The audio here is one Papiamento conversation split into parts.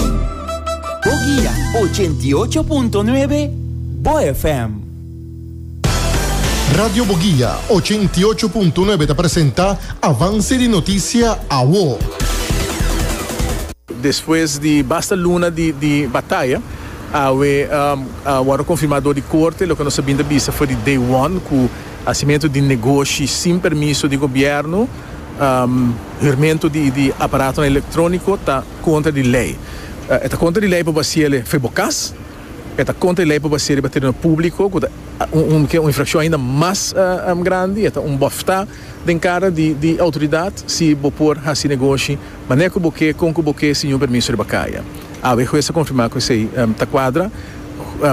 Bo guia ochenta i ocho punto nuebe, Bo FM. Radio Bo Guia ochenta i ocho punto nuebe ta presenta Avance di Noticia Awo. Despues di basta luna di di bataya awe a wordo confirma door di corte loke nos a bin ta bisa for di day one cu hacimento di negoshi sin permiso di gobierno hurmento di di aparatonan electronico ta kontra di lei. E ta kontra di lei pa basia el fe bo kas. E ta kontra di lei pa basia riba tereno públiko, ku ta un ke un infrakshon ainda mas grandi. E ta un bòftá den kara di outoridat si bo por hasi negoshi manera ku bo ke, kon ku bo ke, sin niun permiso riba kaya. Awe e hues a konfirmá ku esei ta kuadra.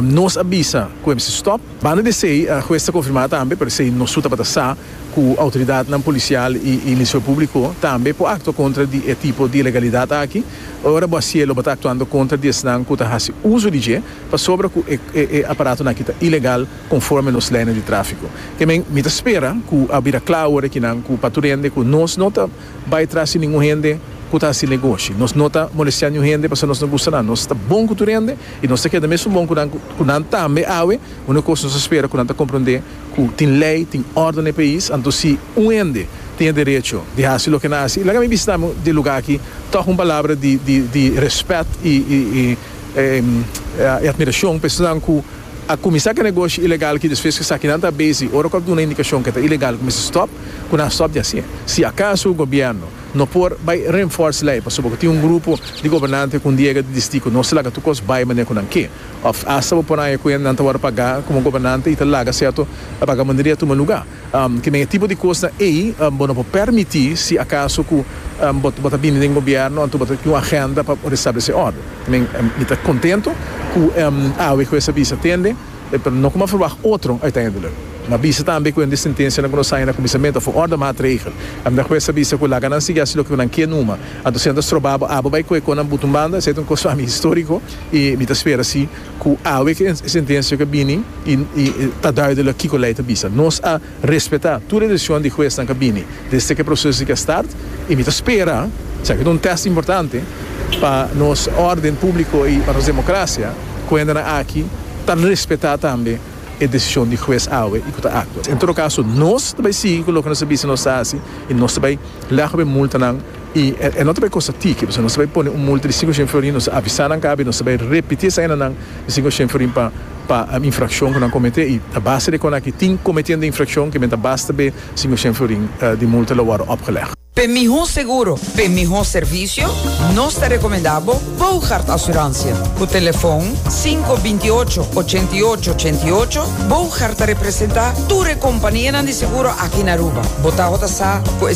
Nos a bisa ku e mester stòp. Banda di esei, hues ta konfirmá tambe, pero esei no su tabata sa. cu autoridadnan policial y Ministerio Publico tambe por actua contra di e tipo di ilegalidad aki. Ora bo a si'e lo bo ta actuando contra di esnan cu ta haci uzo di dje pasobra cu e aparatonan aki ta ilegal conforme nos leynan di trafico. Te men mi ta spera cu a bira cla awor ekinan cu pa tur hende cu nos no ta bay tras di ningun hende cu ta haci negoshi. Nos no ta molestia niun hende pasobra nos no gusta nan. Nos ta bon cu tur hende y nos ta keda mesun bon cu nan cu nan tambe awe. Unico cos nos ta spera cu nan ta compronde. Cu tin ley, tin orde na e pais, anto si un hende tin e derecho di haci loke na haci, laga mi bisita mi di e lugar aki toch un palabra di di di respet y y y admiracion pa esnan cu a cuminsa cu e negoshi ilegal aki despues cu esaki nan ta busy ora cu a duna indicacion cu e ta ilegal cuminsa stop, cu nan stop di haci. Si acaso gobierno no por bay reinforce ley pasobra cu tin un grupo di gobernante cu un diega di disdi cu no ta laga tur cos bay manera cu nan ke. Òf asta bo por haña ku e nan ta wòrdu pagá komo gobernante i ta laga sèrto vagamunderia tuma lugá. Kimen e tipo di kosnan ei bo no por pèrmití si akaso ku bo ta bini den gobièrnu anto bo ta tin un agenda pa restablesé òrdu. Kimen mi ta kontentu ku awe ku esa bisa tende, pero no kuma ferwagt otro uiteindelijk. Mi a bisa tambe ku ende sentensianan ku nos haña na kuminsamentu a for òrdu maatregel. Mihó ku esa bisa ku laga nan sigui hasi loke nan ke numa, anto si nan ta stroba bo abo bai koe konan butu un banda, esei ta un kos pa mi históriko. I mi ta spera si ku awe ku e sentencia ke bini i ta duidelijk kiko lei ta bisa. Nos a respeta tur e decision di huesnan ke bini desde ku e proces di ke start i mi ta spera, esaki ta un test importante pa nos orden publico i pa nos democracia, ku hendenan aki ta respeta tambe e decision di hues awe i ku ta actua. En todo caso nos ta bai sigui ku loke nos a bisa nos ta hasi i nos ta bai lehgba e multanan. I e no ta bay cosa tiki, pasobra nos ta bay pone un multa di cinco shen florin, nos ta avisa nan kabi, nos ta bay repiti esa hende nan e cinco shen florin pa pa infraccion cu nan comete, i a base di escona aki tin cometiendo infraccion cu men ta basta be cinco shen florin di multa lo wordo opgeleg. P'e miho seguro, p'e miho servicio, nos ta recomenda bo Boogaard Assurantia. Cu telefon cinco binti ocho ochenta i ocho ochenta i ocho, Boogaard ta representa tur e companianan di seguro aki na Aruba. Bo taho ta sa cu e.